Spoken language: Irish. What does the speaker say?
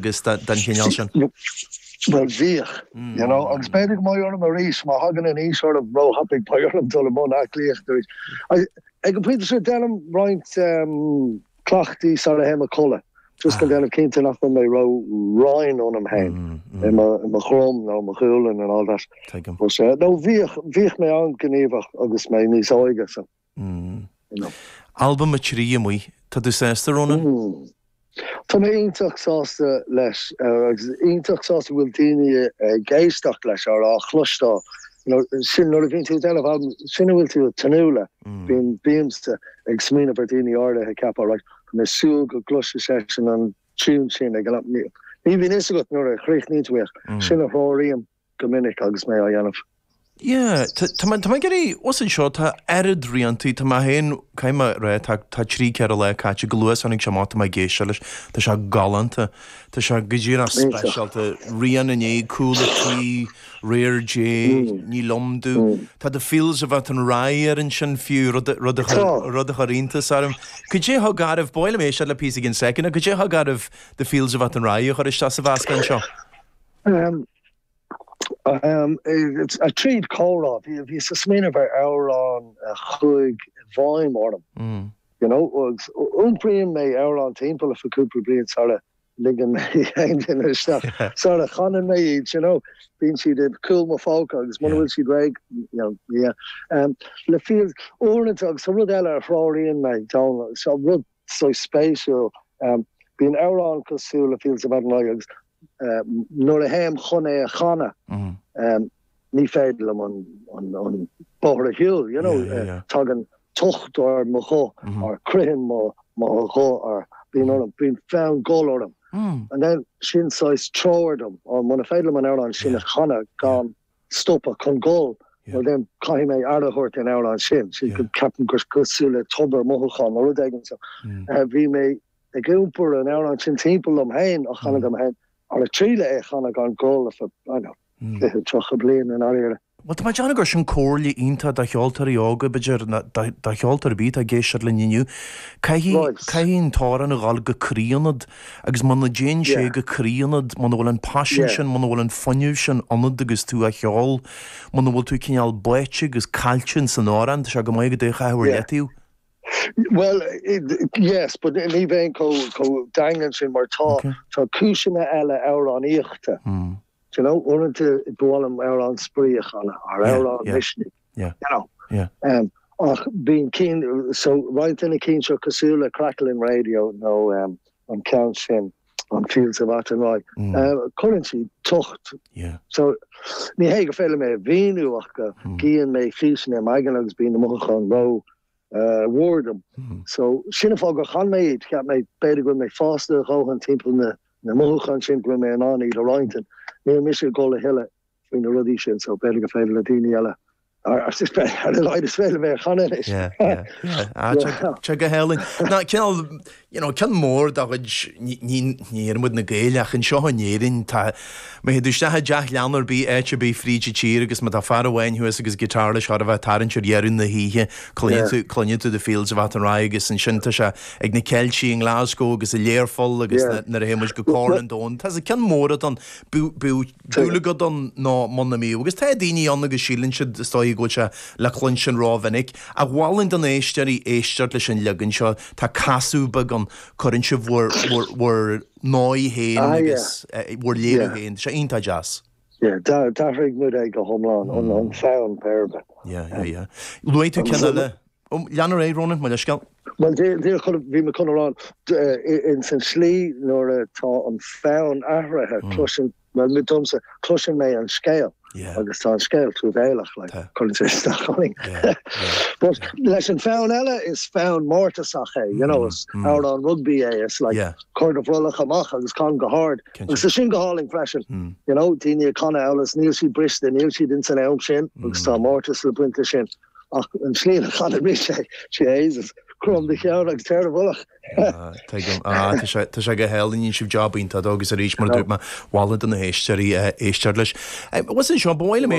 agus den chineál sin. Bhuel, bhíodh, you know, agus b'fhéidir go mbeidh orm arís, má thagann an aois orm, róthapaidh, beidh orm dul i mbun aclaíochta arís. Ag an bpointe sin, déanaim roinnt cleachtaí sara théim a chodladh, just chun déanamh cinnte nach bhfuil mé róraighin ionam féin, i mo dhroim nó i mo ghualainn and all that. Nó bhíodh mé an-ghníomhach agus mé níos óige, so. Mh. Albam a trí, Amuigh. Tá tú sásta, Rónán? Mh. Tá mé iontach sásta leis agus iontach sásta go bhfuil daoine ag éisteacht leis or á chloisteáil. Sin, nuair a bhíonn tú ag déanamh albam, sin a bhfuil tú ag tnúth le. Bíonn, bímse ag smaoineamh ar dhaoine áirithe ag ceapadh, right, tá mé ag súil go gcloisfidh seisean an tiún sin ag an am. Ní bhíonn fhios agat nuair a chríochnaíonn tú é ach sin a threoraíonn mé. go minic agus mé á dhéanamh. Yeah, tá mé ag iarraidh, ós anseo tá oiread rianta, tá mé féin, caithfidh mé a rá, tá, tá trí, ceithre lá caite, go luath is tháinig sé amach, tá mé ag éisteacht leis, tá sé galánta, tá sé go dtí an-speisialta, An Irish Cúlach, Réir Dé, Níl Iontu, tá The Fields of Athenry air ansin fiú, rud a, rud a chuir, rud a chuir iontas orm. Cad é a thug ort, ba mhaith liom éisteacht le píosa i gceann second, cad é a thug oraibh The Fields of Athenry a chur isteach sa mheascán seo? Tríd comhrá, bhíos ag smaoineamh ar amhrán a chuaigh i bhfeidhm orm. You know, agus iompraíonn mé amhrán timpeall liom for cúpla bliain sara ligeann mé aon duine isteach. Sara chanann mé iad, you know, bíonn siad i cúl mo phóca agus muna bhfuil siad réidh, you know, yeah. Is fíor, uaireanta agus tá rud eile a threoraíonn mé, Dónall, so rud saghas spéisiúil. Bíonn amhráin cosúil le Fields of Athenry agus nuair a théim chun é a chanadh, ní féidir liom an bóthar a shiúl, you know, tagann tocht ar mo ghuth or critheann mo ghuth or bíonn orm, bíonn fonn gol orm and then sin saghas treoir dom, ó muna féidir liom an amhrán sin a chanadh gan stopadh, chun gol, then caithfidh mé aire a thabhairt don amhrán sin, so ceapaim gur cosúil le tobar mothúchán nó rud éigin so bhí mé ag iompar an amhrán sin timpeall liom féin á chanadh dom féin ag triail é a chanadh gan gol for I dunno fiche tríocha bliain i ndáiríre. Bhuel, tá mé ag déanamh gur sin comhairle iontach do cheoltóirí óga, b'fhéidir, nó do cheoltóir ar bith atá ag éisteacht linn inniu, caithfidh an t-amhrán a dhul go croí ionat, Agus muna dtéann sé go croí ionat, muna bhfuil an paisean sin, muna bhfuil an fuinneamh sin ionat agus tú á cheol, muna bhfuil tú cineál báite agus caillte in san amhrán, tá sé go maith agat é a chaitheamh ar leataobh. Bhuel, yes, but ní bheinn chomh daingean sin mar tá cúiseanna eile amhránaíochta, d'you know, uaireanta ba mhaith liom amhrán spraoi a chanadh, or amhrán misnigh. Ach bíonn cinn so roinnt de na cinn seo cosúil le Craiceáilte Raidió nó an ceann sin an Fields of Athenry. Cuireann sé tocht. So ní hé go féidir mé a mhíniú ach go gcíonn mé físeanna i m'aigne agus bíonn na mothúcháin rómhór dom. So sin an fáth gur chan mé iad, cheap mé b'fhéidir go raibh mé fásta a dhóthain timpeall na mothúcháin sin go raibh mé in ann iad a roinnt. Níl mise ag dul a thuilleadh faoi na rudaí sin so beidh a pléadh le daoine eile ar is beidh ar a laghad is féidir mé a chanadh anois. Yeah, yeah, yeah, tá sé go hálainn. Tá cineál, you know, ceann mór de chuid, ní, ní oireann muid na Gaeil ach anseo in Éirinn tá, má théid tú isteach i dteach leanna ar bith áit ar bith fríd an tír agus má tá fear amháin thuas agus guitar leis nuair a bheas sé ag tarraingt ar dheireadh na hoíche cluineann tú, cluineann tú The Fields of Athenry agus ansin tá sé ag na Ceiltigh i nGlasgow agus i Learpholl agus nuair a théann muid go Corn an Domhain tá sé ceann mór acu ann, bíodh, bíodh. dúil agat ann nó ná bíodh, agus tá daoine ann agus síleann siad, is dóigh, go bhfuil sé le cluinstin rómhinic. Ach mholfainn do na héisteoirí éisteacht leis an leagan seo, tá casadh beag ann, cuireann sibh bhur ndóigh féin agus bhur léiriú féin, tá sé iontach deas. D'athraigh muid é go hiomlán, an fonn, péirbhe. Luaigh tú ceann eile, Om, lean ort, a Rónáin, mo leithscéal. Bhuel, bhí mé chun a rá, ins an tslí nuair atá an fonn athraithe, cloisim, bhuel, mé domsa, cloiseann mé an scéal agus tá an scéal truamhéalach, like, cuireann sé isteach orainn. But, leis an fonn eile, is fonn mórtasach é, you know, is amhrán rugbaí é, is like, cuir do bhrollach amach agus can go hard. Agus tá sin go hálainn freisin, you know, daoine ag canadh ar nós níl siad briste, níl siad ins an am sin agus tá mórtas le baint as sin. Ach an tslí a chaith mise ag, Jesus, crom do cheann agus téir i bhfolach. Tuigim. Á, tá sé go hálainn, rinne sibh job iontach dó agus arís, mar a dúirt mé, mholfainn do na héisteoirí éisteacht leis. Listen, Seán, ba mhaith liom é.